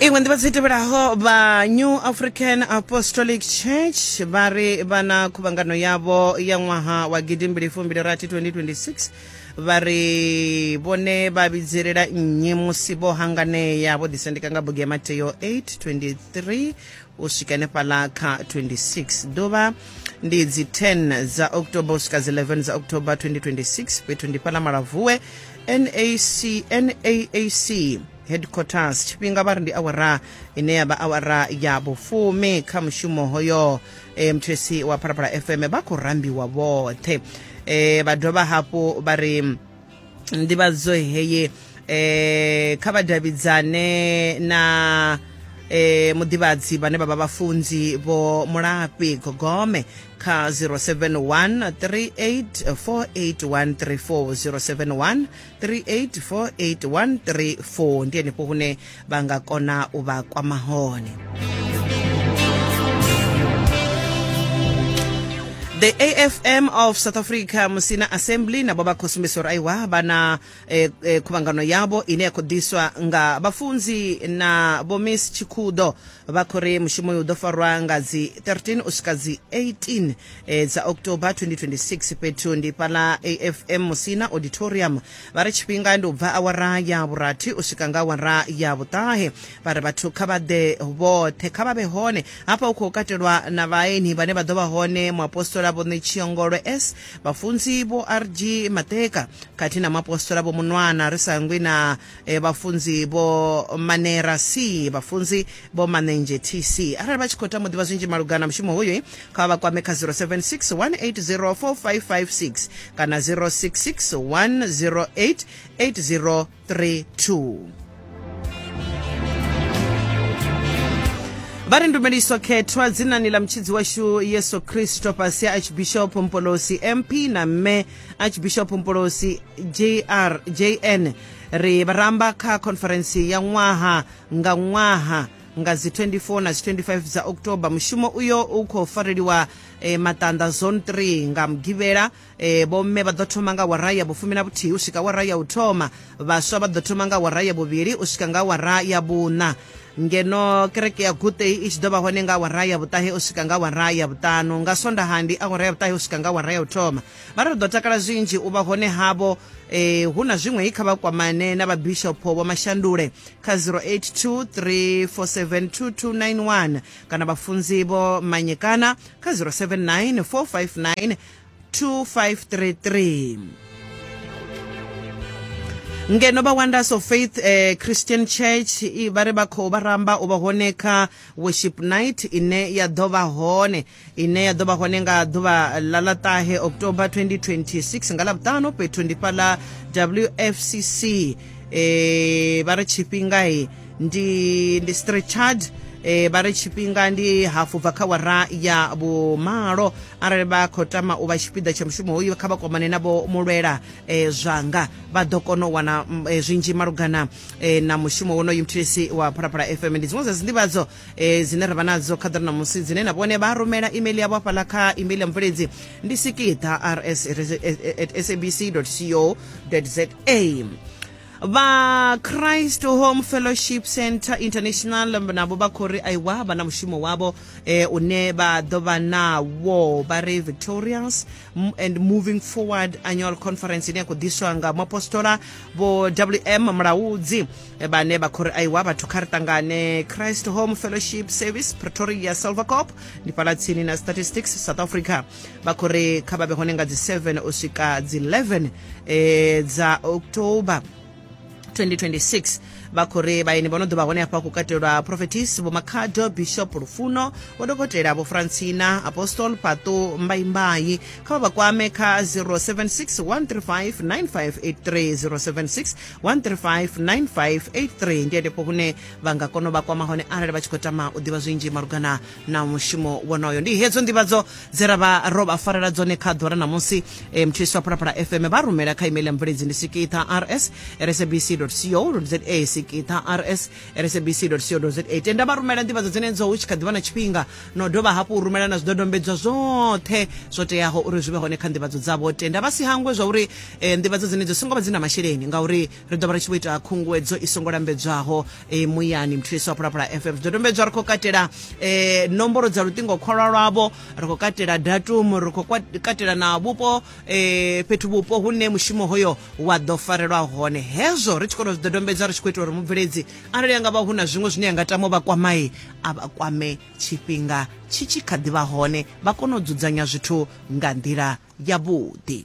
iṅwe nḓivhadzo i tevhelaho vha new african apostolic church vha ri vha na khuvhangano yavho ya ṅwaha wa gidimbili fumbili rathi 2026 vha ri vhone vha vhidzelela nnyi musi vho hanganea vho ḓisendeka nga bugu ya mateo 823 u swika henefhala kha 26 ḓuvha ndi dzi 10 dza october u swika dzi 11 dza october 2026 fhethu ndi fhala malavuwe nac naac headquarters tshifhinga vha ri ndi awara ine ya vha awara ya vhufumi kha mushumo hoyo e, mthwesi wa phalaphala fm vha khou rambiwa vhoṱhe e, vha dovha hafhu vha ri nḓivhadzo heye e, kha vha davhidzane na e, muḓivhadzi vhane vha vha vhafunzi vho mulafhi gogome kha 071 3848134 071 ndi henefho hune vha nga kona u vha kwama hone the afm of south africa musina assembly nabo vha khou sumbisa uri aiwa vha na e, e, khuvhangano yavho ine ya khou ḓiswa nga vhafunzi na vho miss tshikhudo vha khou ri mushumo uyu u ḓo farwa nga dzi 13 u swika dzi 18 e, dza october 2026 fhethu ndi fhala afm musina auditorium vha ri tshifhinga ndi u bva awara ya vhurathi u swika nga awara ya vhuṱahe vha ri vhathu kha vha ḓe vhoṱhe kha vha vhe hone hafha hu khou katelwa na vhaeni vhane vha ḓo vha hone muapostola vho ṋetshiongolwe s vhafunzi vho rg mateka khathihi na muapostola vho munwana ri sa ngwi na e, vhafunzi vho manera c vhafunzi vho manenzhe tc arali vha tshi khou tama u ḓivha zwinzhi malugana na mushumo hoyu kha vha kwame kha 076 180 4556 kana 066 108 80 32 vha ri ndumeliso khethwa dzinani ḽa mutshidzi washu yesu kristo fhasi ya archbishop mpolosi mp na mme archbishop mpolosi jr jn ri vharamba kha khonferentsi ya ṅwaha nga ṅwaha nga dzi 24 na dzi 25 dza october mushumo uyo u khou fareliwa eh, maṱanḓa zone 3 nga mugivhela e, vhomme vha ḓo thoma nga wara ya vhufumi na vhuthihi u swika wara ya u thoma vhaswa vha ḓo thoma nga wara ya vhuvhili u swika nga wara ya vhuṋa ngeno kereke ya gutei i tshi ḓo vha hone nga wara ya vhuṱahe u swika nga wara ya vhuṱanu nga swondaha ndi awara ya vhuṱahe u swika nga wara ya u thoma vha ri ri ḓo takala zwinzhi u vha hone havho eh, hu na zwiṅwe i kha vha kwamane na vhabishopho vho mashandule kha 0823472291 kana vhafunzi vho manyekana kha 079 459 2533 ngeno vha wonders of faith eh, christian church i- vha ri vha khou vha ramba u vha hone kha worship night ine ya ḓo vha hone ine ya ḓo vha hone nga ḓuvha ḽa ḽa ṱahe october 2026 nga ḽavhuṱanu fhethu ndi fhaḽa wfcc eh, vha ri tshifhinga ndi ndi strechard e, vha ri tshifhinga ndi hafu bva kha wara ya vhumalo arali vha khou tama u vha tshipiḓa tsha mushumo hoyu kha vha kwamane na vho mulwela e, zwanga vha ḓo kona u wana mm, e, zwinzhi malugana e, na mushumo wonoyu mthilisi wa phalaphala fm ndi dziṅwe dza dzinḓivhadzo e, dzine ra vha nadzo kha ḓira na musi dzine na vhone vha rumela email yavho hafhaḽa kha email ya mubveledzi ndi sikiḓa rs at sabc co za vha christ home fellowship center international navho vha khou ri aiwa vha na mushumo wavho eh, une vha ḓo vha nawo vha ri victorious and moving forward annual conference ine ya khou ḓiswa nga muapostola vho wm mulaudzi eh, vhane vha khou ri aiwa vhathu kha ri ṱangane christ home fellowship service pretoria silvercop ndi fhala tsini na statistics south africa vha khou ri kha vha vhe hone nga dzi 7 u swika dzi 11 e, dza october 2026 vha khou ri vhaeni vho no ḓo vha hone hafha ku katelwa prophetis vho makhado bishop lufuno vho dokotela vho francina apostol pato mbaimbai kha vha vha kwame kha 0761359583 ndi henefho hune vha nga kona u vha kwama hone arali vha tshi khou tama u ḓivha zwinzhi malugana na mushumo wonoyo ndi hedzo ndivhadzo dze ra vha ro vha farela dzone kha ḓora ṋamusi e, mthulisi wa phalaphala fm vha rumela kha email ya mubveledzi ndi sikitha rs rsabc co za sikitha rs rsabc co za tenda vha rumela ndivhadzo dzenedzo hu tshi kha ḓivha na tshifhinga no dovha hafhu u rumela na zwidodombedzwa zwoṱhe zwo teaho uri zwi vhe hone kha ndivhadzo dzavho tenda vha si hangwe zwa uri e, ndivhadzo dzenedzo songo vha dzi na masheleni ngauri ri ḓo vha ri tshi vho ita khunguwedzo i songo lambedzwaho e, muyani mthulisi wa phulaphula fm zwidodombedzwa ri khou katela e, nomboro dza luṱingo khwalwa lwavho ri khou katela datumu ri khou katela na vhupo e, fhethu vhupo hune mushumo hoyo wa ḓo farelwa hone hezwo ri tshi kona zwidodombedzwa ri tshi khou itela uri mubveledzi arali anga vha hu na zwiṅwe zwine ya nga tama vha kwamai a vha kwame tshifhinga tshi tshi kha ḓi vha hone vha kone u dzudzanya zwithu nga nḓila yavhuḓi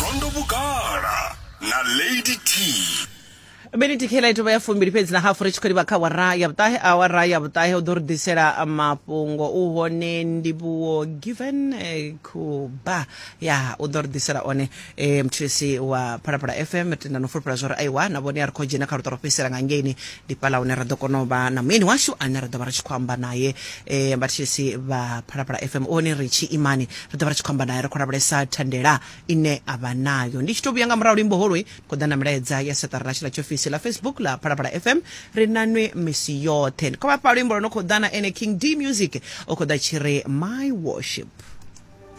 gondo vhugala na lady t miniti khela itova ya fumbili fhedzi na hafu ri tshi khou livha kha wara ya vhuṱahe awara ya vhuṱahe u ḓo ri ḓisela mafhungo u hone ndivhuwo given eh, kuba ya u ḓo ri ḓisela one eh, mthulisi wa phalaphala fm tenda no fulufhela zwa uri aiwa na vhone a ri khou dzhena kha luṱa ro fhedzisela nga ngeini ndi fhaḽa hune ra ḓo kona u vha na muyeni washu ane ra ḓo vha ri tshi khou amba naye um eh, vhathetshelesi vha phalaphala fm one ri tshi imani ri ḓo vha ri tshi khou amba naye ri khou lavhelesa thandela ine a vha nayo ndi tshi tou vhuya nga murahu luimbo holoi ri khou ḓa na milaedza ya seṱara ḽashu ḽa tshiofisi ḽa facebook ḽa phalaphala fm ri na nwe misi yoṱhe ndi khou vhafha luimbo lwo no khou ḓa na ene king d music o khou ḓa tshi ri my worship